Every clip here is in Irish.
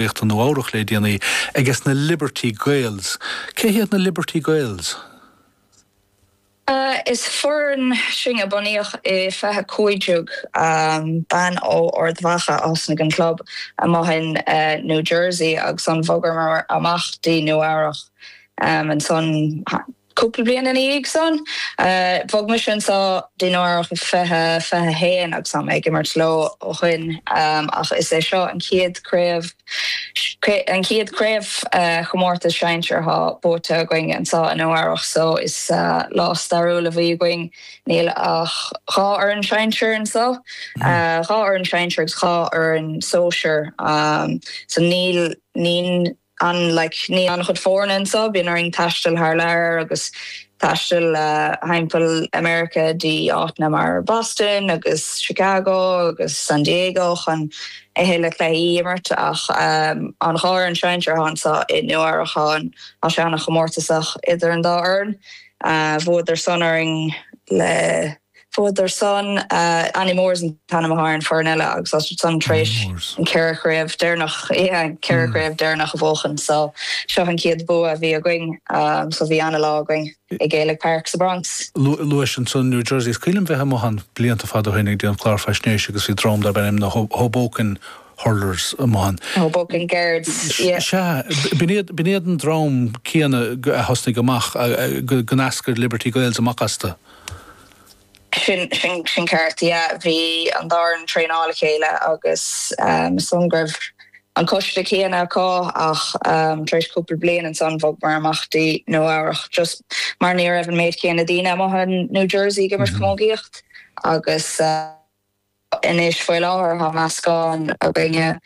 Ríocht Nua Eabhrach le déanaí ages na Liberty Gaels. Cé hiad na Liberty Gaels? Is foireann sinn a bunaíodh i fiche cúig déag bean ó Ard Mhacha a thosnaigh an club amuigh in New Jersey agus an bhogamar amach dtí Nua Eabhrach ansan. Cúpla bliain ina dhiaidh san, bhog mise anseo dtí Nua Eabhrach 2021 agus tá mé ag imirt leo ó shoin ach is é seo an chéad chraobh an chéad chraobhchomórtas sinsear atá buaite againn anseo i Nua Eabhrach so is lá stairiúil a bhí againn. Níl ach dhá fhoireann sinsear anseo, dhá fhoireann sinsear agus dhá fhoireann sóisear so níl ann like níl an-chuid foirne anseo, bíonn orainn taisteal thar lear agus taisteal thimpeall America dtí áiteanna mar Boston agus Chicago agus San Diego chun a thuilleadh cluichí a imirt ach an dá fhoireann sinsear atá anseo i Nua Eabhrach tá sé ana chomórtasach idir an dá fhoireann, bhuadar san orainn le. Bhuadar san, Annie Moores an t-ainm atá ar an foireann eile agus iad san tar éis an ceithre chraobh deireanach, ceithre chraobh deireanach a bhuachan so seo an chéad bua a bhí againn so bhí ana lá againn i Gaelic Park sa Bronx. Luais ansan New Jersey. Is cuimhin liom bheith amuigh ann blianta fada ó shin ag déanamh clár faisnéise agus bhí dream darb ainm na Hoboken Hurlers amuigh ann. Hoboken Guards, yeah. Sea, b'in iad an dream céanna a thosnaigh amach, go n-eascair Liberty Gaels amach astu. Sin, sin, sin ceart, yeah. Bhí an dá fhoireann ag traenáil le chéile agus is dóigh go raibh an coiste céanna acu ach tar éis cúpla bliain ansan bhogamar amach dtí Nua Eabhrach just mar ní raibh an méid céanna daoine amuigh in New Jersey ag imirt camógaíocht agus, Anois faoi láthair tá meascán againne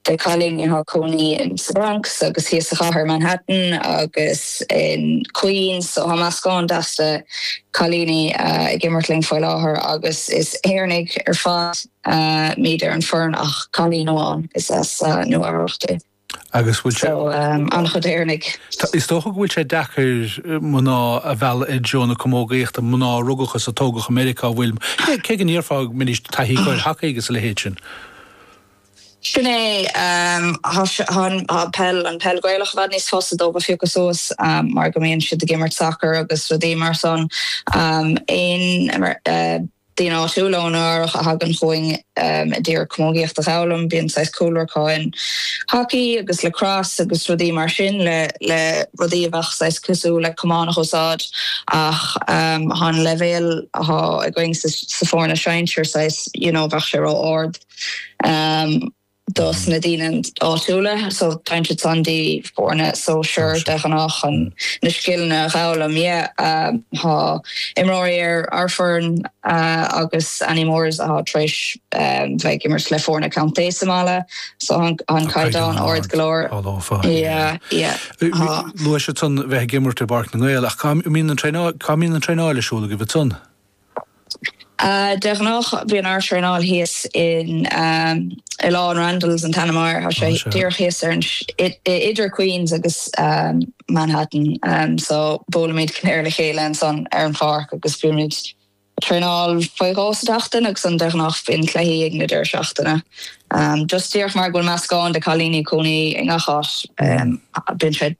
de chailíní atá cónaí in sa Bronx agus thíos sa chathair, Manhattan agus in Queens, so tá meascán deas de chailíní ag imirt linn faoi láthair agus is Éireannaigh ar fad muid ar an foireann ach cailín amháin is as Nua Eabhrach di. Agus bhfuil sé. So, an-chuid Éireannaigh. Tá, is dócha go bhfuil sé deacair mná a mhealladh i dtreo na Camógaíochta, mná a rugadh is a tógadh i Meiriceá, an bhfuil, cé go ndéarfá go mbeadh taithí acu ar hacaí agus a leithéid sin. Sin é, tá peil, an peil Gaelach i bhfad níos fusa dóibh a phiocadh suas mar go mbíonn siad ag imirt sacar agus rudaí mar san. Aon, Daoine áitiúla ó Nua Eabhrach a thagann chugainn a d'iarraidh camógaíocht a dh'fhoghlaim. Bíonn saghas cúlra acu in hacaí agus lacrosse agus rudaí mar sin le, le rudaí a bheadh saghas cosúil le camán a dh'úsáid ach tá an leibhéal atá againn sa, sa foirne sinsir saghas you know bheadh sé ró-ard. do na daoine áitiúla, so tá intersanna,, foirne sóisir de ghnáth, chun na scileanna a dh'fhoghlaim. Yeah, thá imreoirí ar ár bhfoireann agus Annie Moores athá tar éis bheith ag imirt le foirne county sa mbaile, so thá an caighdeán ard go leor. Luaigh tusa ansan bheith ag imirt i bPáirc na nGael ach cá mbíonn an traenáil, cá mbíonn an traenáil ar siúl agaibh ansan? De ghnách bíonn ár traenáil thíos in Oileán Randalls, an t-ainm air, tá sé díreach thíos ar, idir Queens agus Manhattan. So buailimid ar le chéile ansan ar an pháirc agus bímid ag traenáil faoi dhó sa tseachtain agus ansan de ghnách bíonn cluichí ag na deireadh seachtaine. Just díreach mar go bhfuil meascán de cailíní, cónaí i ngach áit, bíonn sé.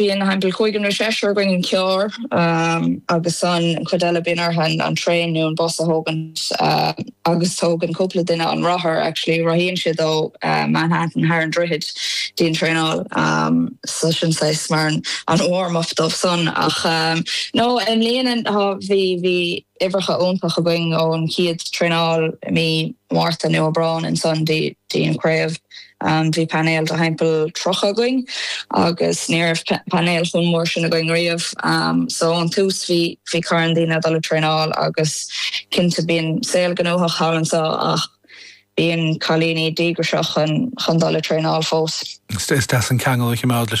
Bíonn thimpeall cúigear nó seisear againn i gcarr agus an chuid eile bíonn orthu an traein nó an bus a thógaint agus tógann cúpla duine an rothar, actually rothaíonn siad ó Manhattan thar an droichead dtí an traenáil so sin saghas mar warm up dóibh san ach no i mbliana bhí. uimhreacha iontach againn ón chéad traenáil i mí Márta nó Aibreán, ansan dtí an chraobh, bhí painéal de thimpeall 30 againn agus ní raibh painéal chomh mór sin againn riamh. So ón tús bhí carn daoine ag dul ag traenáil agus cinnte bíonn saol gnóthach thall anso ach bíonn cailíní díograiseach chun dul ag traenáil fós. Is deas an ceangal a choimeád leis